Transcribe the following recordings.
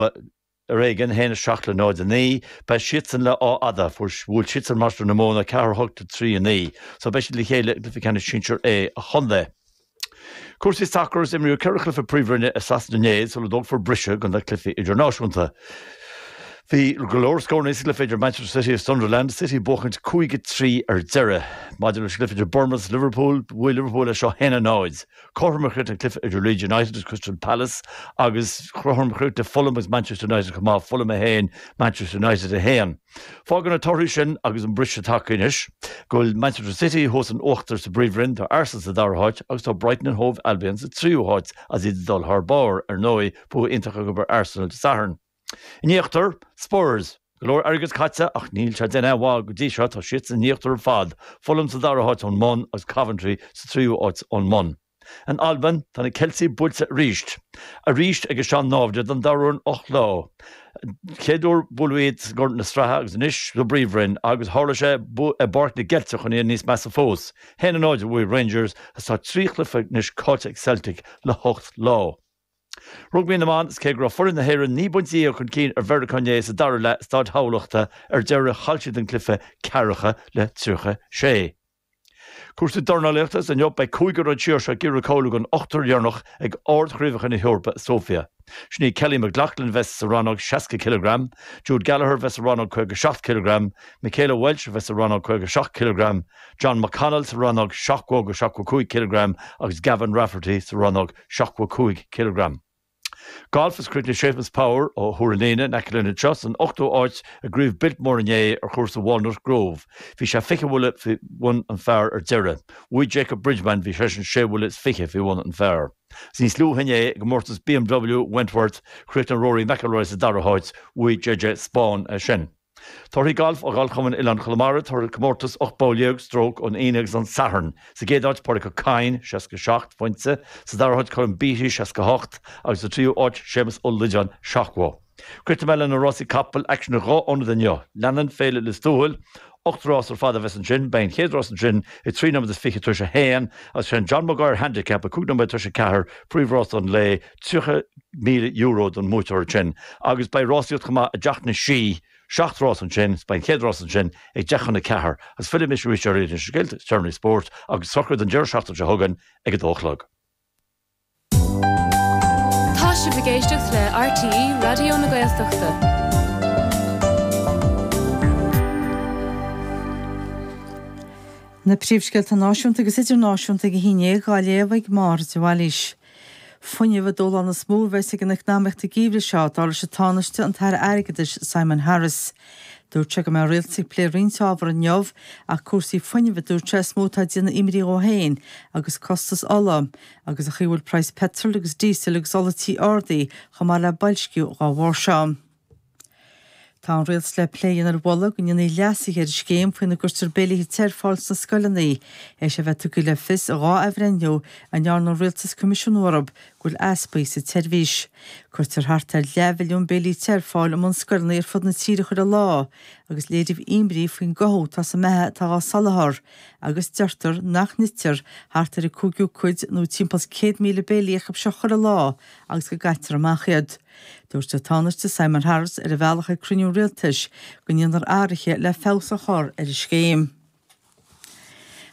ar éigin, 1, 7 le 0, 9, beidh siadsan le Áth Fhada, fuair, bhuail siadsan Mainistir na Móna 4, 8 le 3, 9, so beidh siad le chéile i gcluiche ceannais sinsir A an chontae. Cúrsaí sacair, is imríodh ceithre chluiche Príomhroinne i Sasana inné sula dtógfar briseadh do na cluichí idirnáisiúnta. Bhí go leor scóranna sa gcluiche idir Manchester City is Sunderland, City ag buachaint 5, 3 ar deireadh. Maidir leis an gcluiche idir Bournemouth is Liverpool, bhuaigh Liverpool é seo 1, 0. Cothrom a chríochnaigh an cluiche idir Leeds United agus Crystal Palace agus cothrom a chríochnaigh Fulham agus Manchester United chomh maith, Fulham 1, Manchester United 1. Fágann na torthaí sin agus an briseadh tagtha anois go bhfuil Manchester City thuas in uachtar sa bPríomhroinn, tá Arsenal sa dara háit agus tá Brighton and Hove Albion sa tríú háit is iad ag dul thar barr, ar ndóigh, bua iontach acu ar Arsenal Dé Sathairn. In íochtar, Spurs, go leor airgid caite ach níl sé ag déanamh aon mhaith go dtí seo, tá siadsan in íochtar ar fad, Fulham sa dara háit ón mbun agus Coventry sa tríú háit ón mbun. In Albain, tá na Ceiltigh buailte arís. Arís ag a sean-naimhde don dara huair in ocht lá. An chéad uair buaileadh iad i gCorn na Sraithe agus anois sa bPríomhroinn agus tharla sé i bPáirc na gCeilteach chun iad níos measa fós. 1-0 a bhuaigh Rangers agus tá trí chluiche anois caillte ag Celtic le hocht lá. Rugbaí na mBan, Cé go raibh foireann na hÉireann naoi bpointe dhéag chun cinn ar Mheiriceá inné sa dara leath i Stáid Thamhlachta ar deireadh, chaill siad an cluiche ceathracha le tríocha sé. Cúrsaí dornálaíochta, Is inniu beidh cúigear as an tír seo ag iarraidh cáiliú don ochtar dheireanach ag Ard-Chraobhacha na hEorpa i Sóifia. Sin iad Kellie McLoughlin a bheas sa rannóg 60 cileagram, Jude Gallagher a bheas sa rannóg 57 cileagram, Michaela Walsh a bheas sa rannóg 57 cileagram, Jon McConnell sa rannóg 70-75 cileagram agus Gavin Rafferty sa rannóg 75 cileagram. Golf is chríochnaigh Séamus Power ó Thuar an Fhíona in aice linn anseo san ochtú áit i gCraobh Biltmore inné ar chúrsa Walnut Grove. Bhí sé fiche bhuille faoi bhun an phar ar deireadh. Bhuaigh Jacob Bridgeman, bhí seisean sé bhuille is fiche faoi bhun an phar. Agus níos luaithe inné i gcomórtas BMW Wentworth, chríochnaigh Rory McIlroy sa dara háit, bhuaigh JJ Spaun é sin. Torthaí Gailf ó Ghalfchumann Oileáin Chonamara, Toradh comórtas 18 bpoll stróc ón Aoine agus an Satharn, Sa gcéad áit, Pádraig Ó Cadhain, 67 phointe, sa dara háit, Colm Beatty, 68, agus sa tríú áit, Séamus Ó Loideáin, 70. Críochnóidh mé leis na rásaí capall aicsean ar dhá ionad inniu. Leanann Féile Lios Tuathail. Ocht rás ar fad a bheas ansin. Beidh an chéad rás ansin ag trí nóiméad is fiche tar éis a haon agus is é an John Maguire Handicap, 5 nóiméad tar éis a ceathair, príomhrás an lae. €30,000 don mbuaiteoir ansin agus beidh rásaíocht chomh maith i dTeach na Sí, seacht rás ansin, beidh an chéad rás ansin ag deich chun a ceathair agus fillfidh mise arís ar na scéalta is deireanaí spóirt agus socruithe an deireadh seachtaine seo chugainn ag a dó a chlog. Tá sibh ag éisteacht le RTÉ Raidió na Gaeltachta. Na príomhscéalta náisiúnta agus idirnáisiúnta ag a haon déag á léamh ag Máire de Bhailís. Fuinneamh an dúshlán is mó a bheas ag an eacnamaíocht an geimhreadh seo, dar leis an Tánaiste, an tAire Airgeadais, Simon Harris. Dúirt sé go mbeidh an Rialtas ag plé roinnt ábhar inniu, ach cúrsaí fuinnimh a dúirt sé is mó atá ag déanamh imní dhó féin, agus costas ola, agus an chaoi a bhfuil praghas peitril agus díosail agus ola tí ardaithe, chomh maith le boilsciú, dhá bharr seo. Tá an Rialtas le plé a dhéanamh ar mholadh go ndéanfaí leasuithe ar an scéim faoina gcuirtear béilí te ar fáil sna scoileanna. Théis a bheith tugtha le fios in dhá athbhreithniú a ndearna an Rialtas coimisiúnú orthu, go bhfuil easpaí sa tseirbhís. Cuirtear thart ar leathmhilliún béilí te ar fáil i mbunscoileanna ar fud na tíre chuile lá agus léiríodh imní faoin gcothú atá sa mbeatha atá dhá soláthar agus deirtear nach n-ithtear thart ar an gcúigiú cuid nó timpeall 100,000 béile acu seo chuile lá agus go gcaitear amach iad. Dúirt an Tánaiste Simon Harris ar a bhealach chuig cruinniú rialtais go ndéanfar athruithe le feabhas a chur ar an scéim.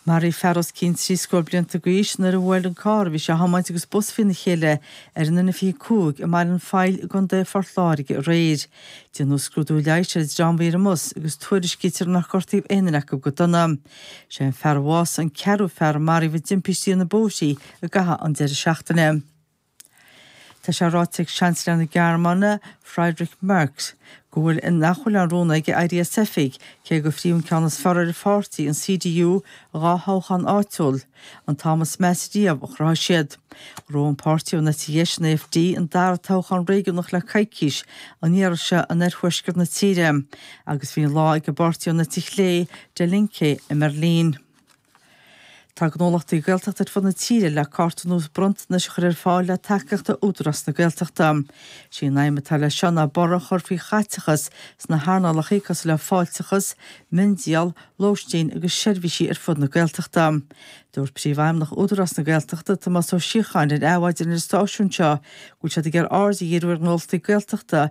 Maraíodh fear os cionn trí scór blianta d'aois nuair a bhuail an carr a bhí sé a thiomáint agus bus faoina chéile ar an N25 i mBaile an Phoill i gContae Phort Láirge aréir. Déanadh scrúdú leighis ar an dream a bhí ar an mbus agus tuairiscítear nár gortaíodh aon duine acu go dona. Sé an fear a bhásaigh an ceathrú fear a maraíodh i dtimpistí ar na bóithrí i gcaitheamh an deireadh seachtaine. Tá sé ráite ag Seansailéir na Gearmáine, Friedrich Merz, go bhfuil a nach bhfuil aon rún aige éirí as oifig, cé gur chinn an ceann is fearr ar a pháirtí, an CDU, i dhá thoghchán áitiúil, an t-am is measa riamh a chruthaigh siad. Ghnóthaigh an páirtí ón eite dheis, an AfD, an dara toghchán réigiúnach le coicís an iarraidh seo in oirthuaisceart na tíre agus bhí an lá ag an bpáirtí ón eite chlé, Die Linke, i mBeirlín. Tá gnólachtaí Gaeltachta ar fud na tíre le cárta nua bronntanais a chur ar fáil le tacaíocht ó Údarás na Gaeltachta. Is í an aidhm atá leis seo ná borradh a chur faoi chaiteachas sna hearnálacha cosúil le fáilteachas, miondíol, lóistín agus seirbhísí ar fud na Gaeltachta. Dúirt Príomhfheidhmeannach Údarás na Gaeltachta, Tomás Ó Síocháin, ar Adhmhaidin ar an stáisiún seo go bhfuil siad ag iarraidh aird a dhíriú ar ghnólachtaí Gaeltachta,